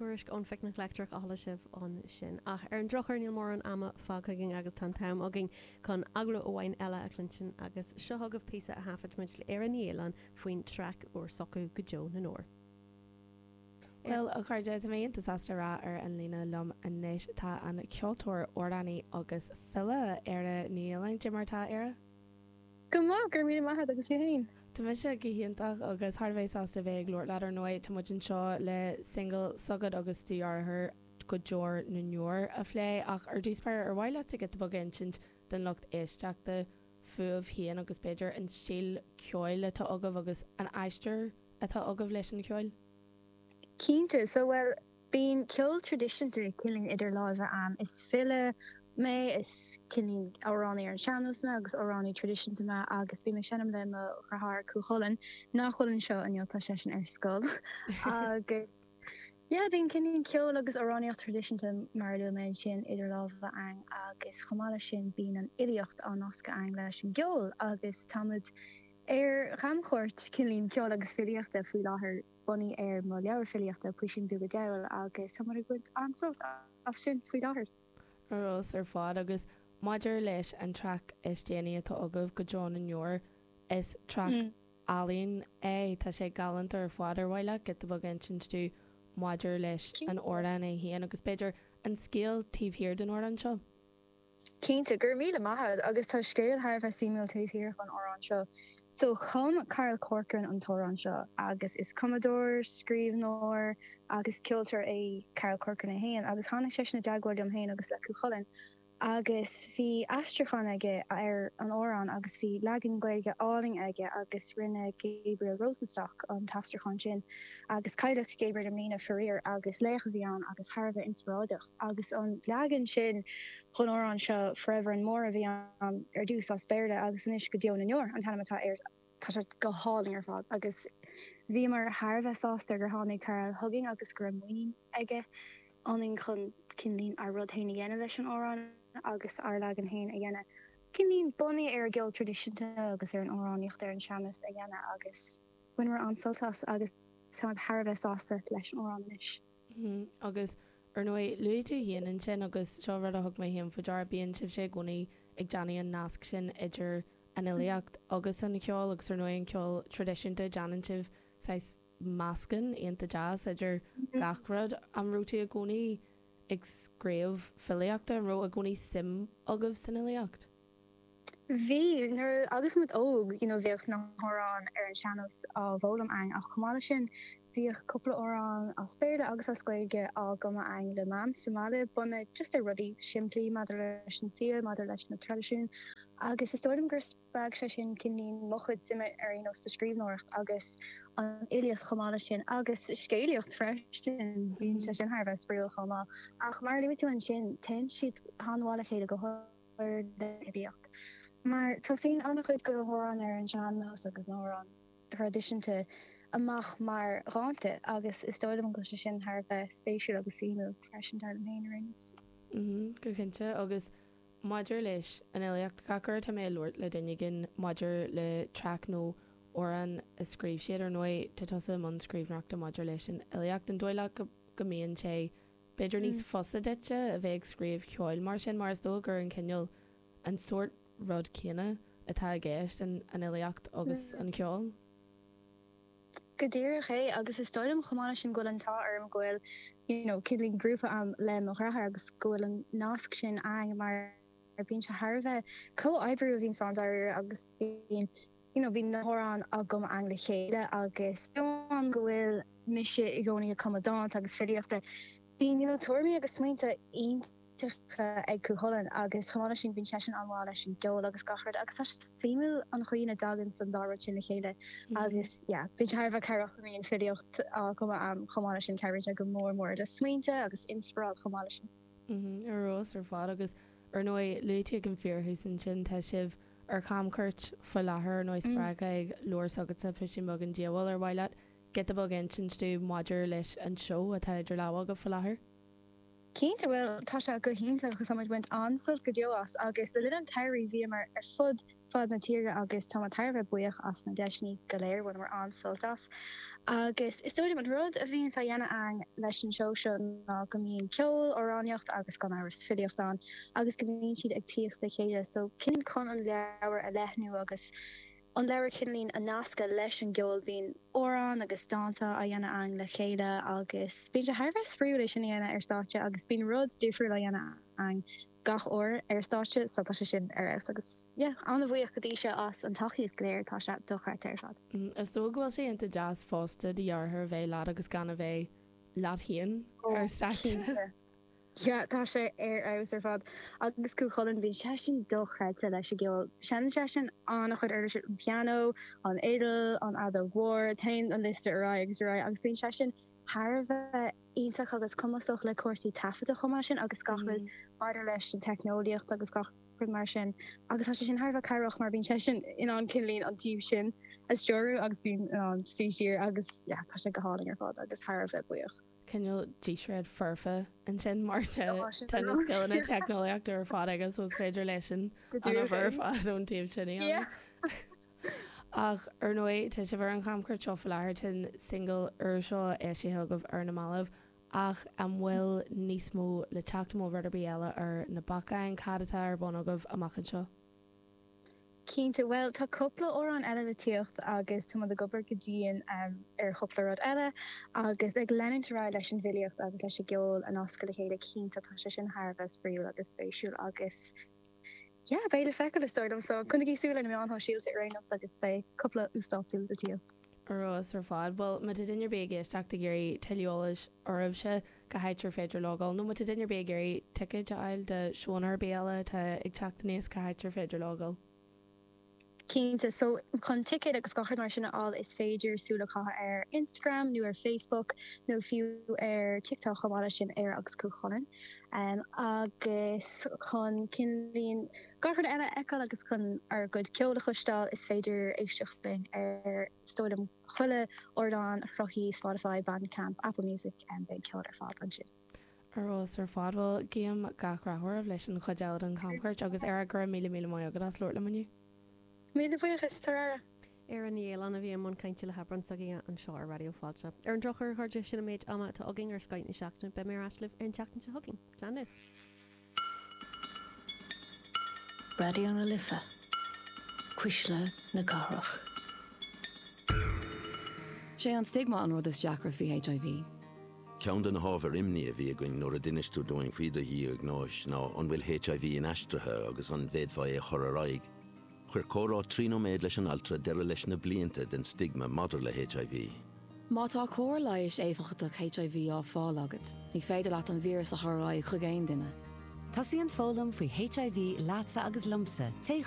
Tuairisc ón Phicnic Leictreach a chuala sibh ansin. Ach ar an drochuair níl mórán ama fágtha againn agus tá an t-am againn chun agallamh amháin eile a chluinstin agus seo chugaibh píosa a thaifid muid le Éire Ní Fhaoláin faoin traic úr s'acu, Go Deo na nDeor. Bhuel, a chairde, tá mé iontach sásta a rá ar an líne liom anois tá an ceoltóir, amhránaí agus file, Éire Ní Fhaoláin. Cad é mar atá, Éire? Go maith, go raibh míle maith agat agus tú féin? Tá mise go hiontach agus thar a bheith sásta a bheith ag labhairt leat. Ar ndóigh, tá muid anseo le singil s'agat agus do dheartháir, Go Deo na nDeor, a phlé, ach ar dtús b'fhéidir, ar mhaith leatsa giota beag a insint don lucht éisteachta fúibh féin agus b'fhéidir an stíl ceoil atá agaibh agus an aistear atá agaibh leis an cheol? Cinnte. So, bhuel, Bíonn ceol traidisiúnta cineál idir lámha a'm. Is file mé, is cineál amhránaí ar an sean-nós mé agus amhránaí traidisiúnta mé agus bím ag seinm le mo dheartháir Cú Chulainn, nach bhfuil anseo inniu, tá seisean ar scoil, agus yeah, bíonn cineál ceol agus amhránaíocht traidisiúnta mar a luaigh mé ansin idir lámha a'm agus chomh maith leis sin bíonn an fhilíocht á nascadh a'm leis an gceol agus táimid ar chamchuairt cineál ceoil agus filíochta faoi láthair. bunaithe ar mo leabhar filíochta, Puisín Beag Dathúil, agus tá muid ag baint an-sult as sin faoi láthair. Ar fheabhas ar fad, agus maidir leis an traic is déanaí atá agaibh, Go Deo na nDeor, is traic álainn é. Tá sé galánta ar fad. Ar mhaith leat giota beag a insint dúinn maidir leis an amhrán é féin, agus b'fhéidir an scéal taobh thiar den amhrán seo? Cinnte, go raibh míle maith agat agus tá scéal thar a bheith suimiúil taobh thiar den amhrán seo. So, chum Carl Corcoran an t-amhrán seo agus is cumadóir, scríbhneoir agus ceoltóir é Carl Corcoran é féin agus tháinig seisean i dteagmháil liom féin agus le Cú Chulainn agus bhí aistriúchán aige ar an amhrán agus bhí leagan Gaeilge álainn aige agus rinne Gabriel Rosenstock an t-aistriúchán sin agus cailleadh Gabriel i mbliana faraor agus laoch a bhí ann agus thar a bheith inspioráideach. agus an leagan sin den amhrán seo 'Forever and More' a bhí ann ar dtús as Béarla agus anois go deo na ndeor an t-ainm atá air. Tá sé go hálainn ar fad agus bhíomar thar a bheith sásta gur tháinig Carl chugainn agus go raibh muinín aige ionainn chun cineál ár rud féin a dhéanamh leis an amhrán agus ár leagan féin a dhéanamh. Cineál bunaithe ar an gceol traidisiúnta agus ar an amhránaíocht ar an sean-nós a dhéanamh agus bhaineamar an-sult as agus táimid thar a bheith sásta leis an amhrán anois. Agus, ar ndóigh, luaigh tú féin ansin, agus seo rud a thug mé féin faoi deara, bíonn sibhse i gcónaí ag déanamh an nasc sin idir an fhilíocht agus an cheol, agus ar ndóigh an ceol traidisiúnta, déanann sibh saghas meascán iontach deas idir gach rud. An raibh tú i gcónaí ag scríobh filíochta? An raibh i gcónaí suim agaibh san fhilíocht? Bhí, nuair agus muid óg, you know bhíodh na hamhráin ar an sean-nós á bhfoghlaim againn ach chomh maith leis sin bhíodh cúpla amhrán as Béarla agus as Gaeilge á gcumadh againn le mam sa mbaile bunaithe just ar rudaí simplí maidir leis an saol, maidir leis na traidisiúin agus is dóigh liom gur spreag sé sin cineáilín mo chuid suime ar you know sa scríbhneoireacht agus an fhilíocht chomh maith leis sin agus scéalaíocht freisin, bíonn sé sin thar a bheith spraíúil chomh maith ach mar a luaigh tú ansin téann siad an-mhaith le chéile go háirid an fhilíocht, mar tosaíonn an-chuid de na hamhráin ar an sean-nós agus na hamhráin thraidisiúnta amach mar dhánta agus is dóigh liom go bhfuil sé sin thar a bheith spéisiúil agus suimiúil freisin, dar liom féin araon. Is. Go cinnte, agus maidir leis an fhilíocht, gach uair atá mé ag labhairt le duine éigin maidir le traic nó amhrán a scríobh siad, ar ndóigh tá tusa i mbun scríbhneoireachta maidir leis an fhilíocht, an dóigh leat go mbíonn sé B'fhéidir níos fusa duit a bheith ag scríobh ceoil mar sin mar is dóigh gur an cineál, an sórt rud céanna atá i gceist an fhilíocht agus an ceol. Go díreach é agus is dóigh liom chomh maith leis sin go bhfuil an t-ádh orm go bhfuil, you know, cineáilín grúpa a'm le mo dhreatháir agus go bhfuil an nasc sin a'm mar bíonn sé thar a bheith comhoibriú a bhíonns ann dáiríre agus bíonn you know, bíonn na hamhráin á gcumadh againn le chéile agus b'ionann go bhfuil mise i gcónaí ag cumadh dánta agus filíochta, bíonn, you know, tuairimí agus smaointe iontacha ag Cú Chulainn agus chomh maith leis sin bíonn seisean an-mhaith leis an gceol agus gach rud agus tá sé suimiúil an chaoi ina dtaganns an dá rud sin le chéile agus, yeah, bíonn sé thar a bheith cabhrach go mbíonn filíocht á cumadh agam chomh maith leis sin, cabhraíonn sé go mór mór le smaointe agus inspioráid chomh maith leis sin. Ar fheabhas ar fad agus ar ndóigh luaite ag an fíorthús ansin tá sibh. ar chamchuairt faoi láthair nó spreagtha ag leabhar s'agatsa, piscín beag an diabhail, ar mhaith leat giota beag a insint dúinn maidir leis an seó atá idir lámha agat faoi láthair? Cinnte, bhuel, tá sé go hiontach agus tá muid ag baint an-sult go deo as agus le linn an tsamhraidh bhíomar ar fud fad na tíre agus táimid thar a bheith buíoch as na deiseanna go léir, bhaineamar an-sult as agus is dóigh liom an rud a bhíonns á dhéanamh againn leis an seó seo ná go mbíonn ceol, amhránaíocht agus gan amhras filíocht ann. agus go mbíonn siad ag tíocht le chéile so cineáilín chun an leabhar a leathnú agus an leabhar cineáilín a nascadh leis an gceol bíonn amhráin agus dánta á dhéanamh againn le chéile agus bíonn sé thar a bheith spraoiúil é sin a dhéanamh ar stáitse agus bíonn rud difriúil á dhéanamh againn gach uair ar stáitse so tá sé sin ar fheabhas agus yeah an-bhuíoch go dtí seo as an tacaíocht go léir tá sé dochreidte ar fad. Is dóigh go bhfuil sé iontach deas fosta do dheartháir a bheith leat agus gan a bheith leat féin ar stáitse. yeah tá sé ar fheabhas ar fad agus Cú Chulainn bíonn seisean dochreidte leis an gceol, seineann seisean an-chuid uirlisí, an pianó, an fhidil, an fheadóg mhór, téann an liosta ar aghaidh agus ar aghaidh agus bíonn seisean thar a bheith iontach agus cumasach le cúrsaí taifeadta chomh maith sin agus gach rud maidir leis an teicneolaíocht agus gach rud mar sin agus tá sé sin thar a bheith cabhrach mar bíonn seisean in ann cineál an taobh sin a stiúradh agus bím in ann suí siar agus yeah tá sé go hálainn ar fad agus thar a bheith buíoch cineál díséad foirfe ansin mar tá na scileanna teicneolaíochta ar fad aige so is féidir leisean an obair ar fad ón taobh sin a dhéanamh. Ach ar ndóigh tá sibh ar an chamchuairt seo faoi láthair tá an single úr seo eisithe agaibh ar na mallaibh ach an bhfuil níos mó le teacht nó rud ar bith eile ar na bacáin cad atá ar bun agaibh amach anseo? Cinnte, bhuel tá cupla amhrán eile le tíocht agus táimid ag obair go dian ar chupla rud eile agus ag leanúint ar aghaidh leis an bhfilíocht agus leis an gceol a nascadh le chéile cinnte, tá sé sin thar a bheith spraíúil agus spéisiúil agus yeah, beidh le feiceáil is dóigh liom, so coinnigí súil ar na meáin shóisialta ar aon nós agus beidh cupla uasdátú le tíocht. Ar fheabhas ar fad, bhuel, má tá duine ar bith ag éisteacht ag iarraidh tuilleadh eolais oraibhse, cá háit ar féidir logáil, nó má tá duine ar bith ag iarraidh ticéid a fháil do seóanna ar bith eile atá ag teacht aníos, cá háit ar féidir logáil? Cinnte, so chun ticéid agus gach rud mar sin a fháil is féidir súil a chaitheamh ar Instagram nó ar Facebook nó fiú ar TikTok chomh maith leis sin, Éire agus Cú Chulainn. Agus chun cineál. Guthrun eile a fheiceáil agus chun ár gcuid ceoil a chloisteáil, is féidir éisteacht linn ar is dóigh liom chuile ardán sruthaithe Spotify, Bandcamp, Apple Music, em beidh an ceol ar fáil ansin. Ar fheabhas ar fad. Bhuel, guím gach rath oraibh leis an chuid eile den chamchuairt agus ar aghaidh, go raibh míle míle maith agat as labhairt liom inniu. Míle buíochas, tabhair aire! Éire Ní Fhaoláin a bhí i mbun cainte le hAbrán s'againne anseo ar Raidió Fáilte. Ar an drochuair, a chairde, sin an méid ama atá againn ar Scoth na Seachtaine. Beidh mé ar ais libh ar an tseachtain seo chugainn. Slán libh! Raidió na Life, Cuisle na Cathrach. Sé an stigma an rud is deacra faoi HIV. Ceann de na hábhair imní a bhí againn nuair a d'inis tú dúinn faoi do dhiagnóis ná an bhfuil HIV inaistrithe agus an bhféadfá é a chur ar aghaidh. Chuir comhrá trí nóiméad leis an altra deireadh leis na blianta den stigma maidir le HIV. Má tá cóir leighis éifeachtach HIV á fáil agat, ní féidir leat an víreas a chur ar aghaidh chuig aon duine. Tosaíonn foghlaim faoi HIV leatsa agus liomsa, téigh